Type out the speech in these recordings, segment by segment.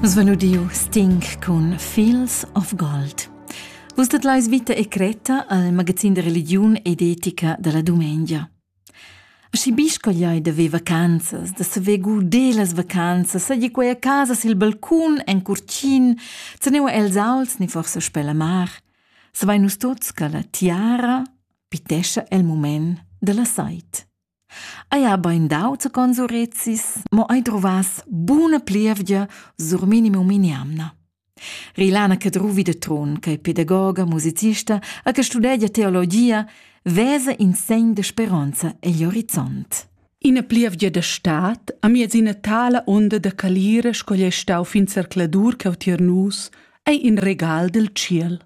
Nus van udiu Sting cun Fields of Gold. Vus dat leis vita e cretta al magazin de religiun ed etica dalla dumengia. Schi biscogliai da ve vacanzas, da saver guder las vacanzas, sagi quei a casa sil balcun en curcin, se neu els auls ni forse sper la mar, savein nus tots che la tiara pitescha el moment della sait. Eir bain d'auter cons urezis, mo ei druvass buna plievgia sur minimum in'jamna. Rilana Cadruvi da Trun, ch'ei pedagoga, musicista e che studegia teologia, vesa in segn de speronza egl horizont. Ina plievgia da stad, amiez ina tala onda da calira sco ei stau fin zercladur cheu tier nus, ei in regal dil tschiel.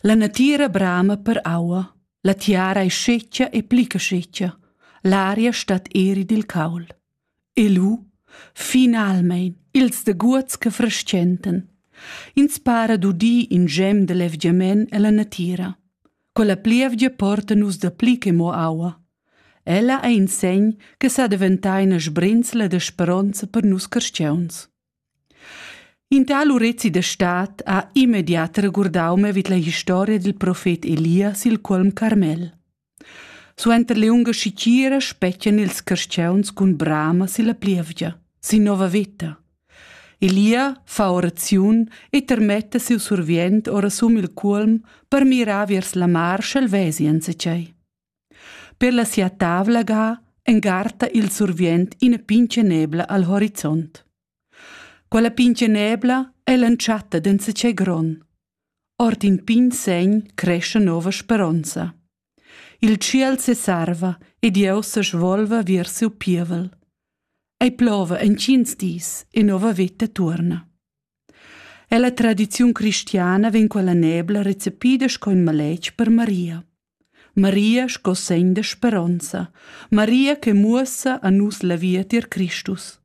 La natira brama per aua, la tiara ei scetga e pli che scetga, l'aria stat eri dil caul. E lu, finalmein, ils daguots che frestgentan. Ins para d'udir in gem de levgiament ella natira. Con la plievgia porta nus da pli che mo aua. Ella ei in segn che sa daventai ina sbrinzla de speronza per nus carstgeuns. In tal urezi da stad ha immediat regurdau me vid la historia dil profet Elia sil cuolm Carmel. Suenter liunga schitgira spetgan ils carstgauns cun brama silla plievgia, sin nova veta. Elia fa oraziun e termetta siu survient ora sum il cuolm per mirar viers la mar sch'el vesi enzatgei. Per la sia tavla ga engarta il survient ina pintgenebla al horizont. Quella pintgenebla è l'entschatta d'enzatgei gron. Ord in pign segn cresce nova speronza. Il tschiel sesarva e Dieu se svolva vers siu pievel. Ei plova en tschins dis e nova veta tuorna. Ella tradiziun cristiana vegn quella nebla recepida sco in maletg per Maria. Maria sco segn da speronza, Maria che muossa a nus la via tier Cristus.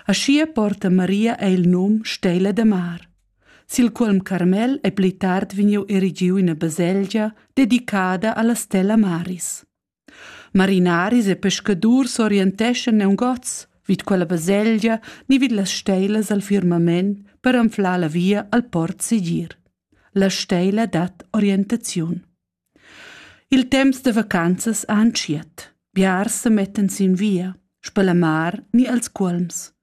Aschia porta Maria ei il num Stella da mar, sil quolm Carmel ei pli tard vegniu erigiu ina baselgia dedicada alla stella Maris. Marinaris e pescadurs orienteschan neungots vid quella baselgia ni vid las steilas al firmament per anflar la via al port segir. La steila dat orientaziun. Il temps da vacanzas ha entschiet. Biars se mettan sin via, spalamar ni als cuolms.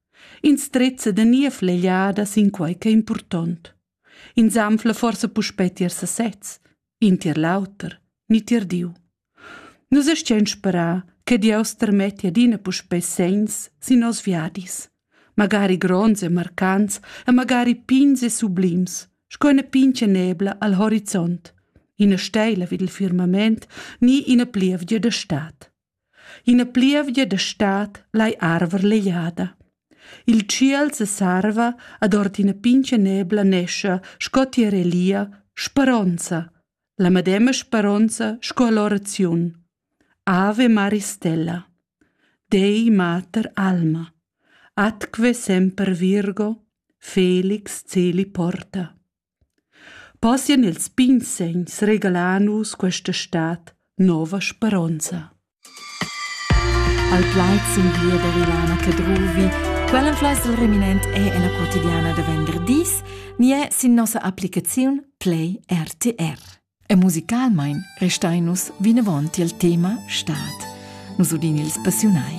Ins trezza da nia flegliada sin quei che è impurtont. Ins anfla forsa puspei tier sesez, in tier l'auter, ni tier Diu. Nus astgein sperar che Dieus termetti adina puspei segns sin nos viadis, magari gronds e marcants e magari pigns e sublims, sco ina pintga nebla al horizont, ina steila vid il firmament ni ina plievgia da stad. Ina plievgia da stad lai arver legliada. Il tschiel sesarva ad ord ina pintga nebla nescha sco tiarelia, speronza, la medema speronza sco all'oraziun. Ave Mari Stella, Dei Mater Alma, atque semper Virgo, Felix celi porta. Possian ils pigns segns regalar nus questa stat nova speronza. Al plaid sin via da Rilana Cadruvi. Quell'influenza il reminent è en la quotidiana da venderdis, ni è sin nossa applicaziun Play RTR. E musicalmain restai nus vinavant il tema Staat. Nus udin ils passiunai.